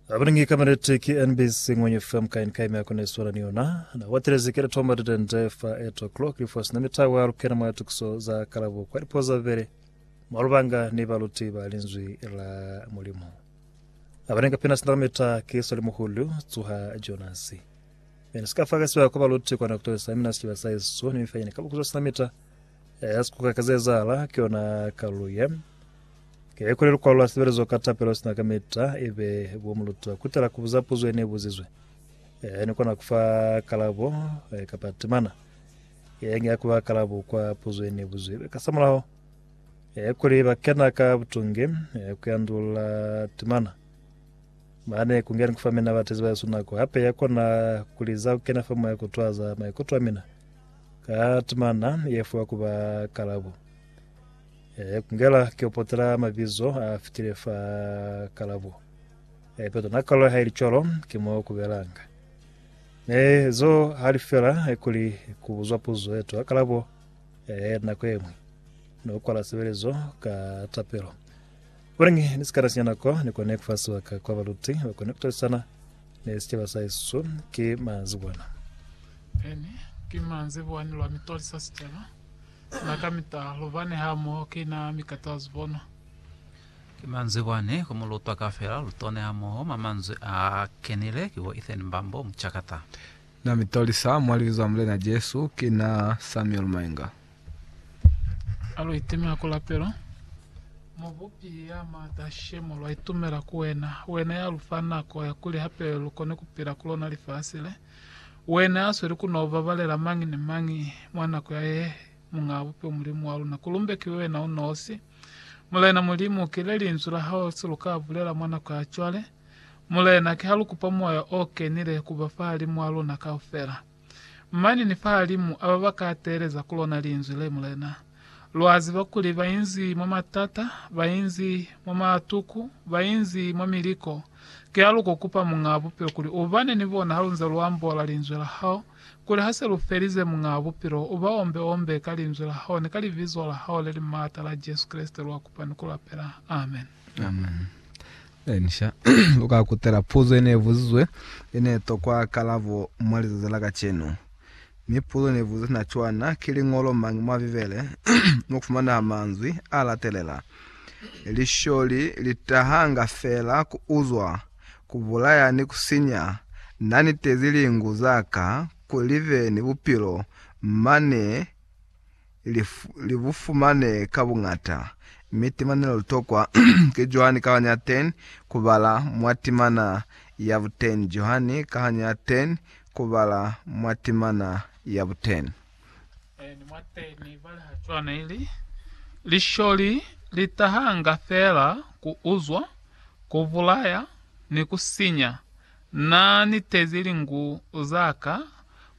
Abaningi kamereti ki NBC ngwenye FM kain kai mya kone swara ni yona. Na watile zikele tomba dite nde fa 8 o'clock li fos na mitawa ya lukena mwa tukuso za kalabo kwa lipo za vele. Malubanga ni baluti ba linzwi la mulimo. Abaninga pina sindala mita ki soli muhulu tsuha Jonasi. Mene sika faka siwa kwa baluti kwa na kutolesa mina siwa sa Yesu ni mifanyene kabo kuzo sinamita. mita Ee, sikuka ka zeezahala ki yona kalu ye. Ke ye kuli lukwalo la sibelezo ka tapelo sina kamita e be bo muluta kutela kubuza puzo ye ne buzizwe. Ee, ni kona kufa kalabo e, kapa timana ye nge ya kuba kalabo kwa puzo ye ne buzizwe. Ka samulaho, e kuli ba kena ka butungi e, ku yandulula timana. Mane ku ngeni kufa mina batezi ba yesu nako hape ya kona kuliza kukena fa moya kutwaza maikuto a mina. Ka tumana ye fuwa ku ba kalabo. E, kungela ke upotela mabizo a fitile fa kalabo. E, peto na kalo ha ili cwalo, ke mo kubelanga. E, zo ha li fela e kuli kubuzwa puzo eto a kalabo e, nako emwi. No kwala sebelezo ka tapelo. Kulañi ni sikata sinyana ko ne kone ku fa sibaka kwa baluti ba kone ku talisana ni sicaba sa hesu? Ki manzibwana. Pene, ki manzibwani lwa mi tolisa sicaba. Na kamita lu bani hamoho ki na mi kata zibono. Ki manzibwani ku mu lutwa kafela lu tone hamoho mwa manzwi a kenile ki bo Ethan Mbambo, mucakata. Na mi tolisa mwa Libizo la Mulena Jesu. Ki na Samuel Mainga. Alu itimela ku lapelo. Mubupi ya maata, she, mu lwa itumela ku Wena. Wena ya lu fa nako ya kuli hape lu kone ku pila ku lona lifasi le. Wena ya sweli ku no babalela mañi ni mañi mwa nako ya ye, Muñaa Bupilo Mulimu wa luna. Ku lumbekiwe Wena u nosi. Mulena Mulimu, ki le Linzwi la Hao se lu ka bulela mwa nako ya cwale. Mulena, ki ha lu kupa Moya o Kenile ku ba fahalimu wa luna kaufela. Mane ni fahalimu a ba ba ka teeleza ku lona Linzwi le, Mulena, lwa ziba kuli ba inzi mwa matata, ba inzi mwa matuku, ba inzi mwa miliko. Kialuku kupa, Muñaa Bupilo, kuli U bane ni bona ha lu nze lu ambola Linzwi la Hao, kuli ha se lu felize, Muñaa Bupilo, U ba ombe-ombe ka Linzwi la Hao ni ka Libizo la Hao le li maata la Jesu Kreste lwa kupa ni ku lapela. Amen. Amen. Lensha, u ka kutela puzo ye ne buzizwe ye ne tokwa kalabo mwa lizazi la kacenu. Mi puzo ne buzizwe sina cwana, Ki liñolo mañi mwa Bibele mo ku fumanaha manzwi a latelela, Lisholi li tahanga fela ku uzwa, ku bulaya ni ku sinya, Na nitezi lingu za ka kuli li be ni bupilo, mane li, li bu fumane ka buñata, mi timana le lu tokwa ki Johani kahanya ya 10 ku bala mwa timana ya bu 10, Johani kahanya ya 10 ku bala mwa timana ya bu 10. Eni mwa 10 i bala ha cwana ili, Lisholi li tahanga feela ku uzwa, ku bulaya, ni ku sinya. Na nitezi lingu zaka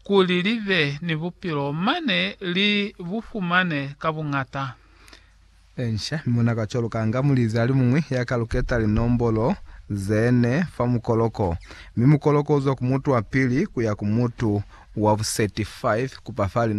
kuli libe ni bupilo, mane li bu fumane ka buñata. Encia, mi muna ka cwaluka nga mulizi alimuñwi ya ka luketa linombolo zene fa mukoloko, mi mukoloko uzwa ku mutu wa pili kuya ku mutu wa buseti 5 kupa fa linombolo.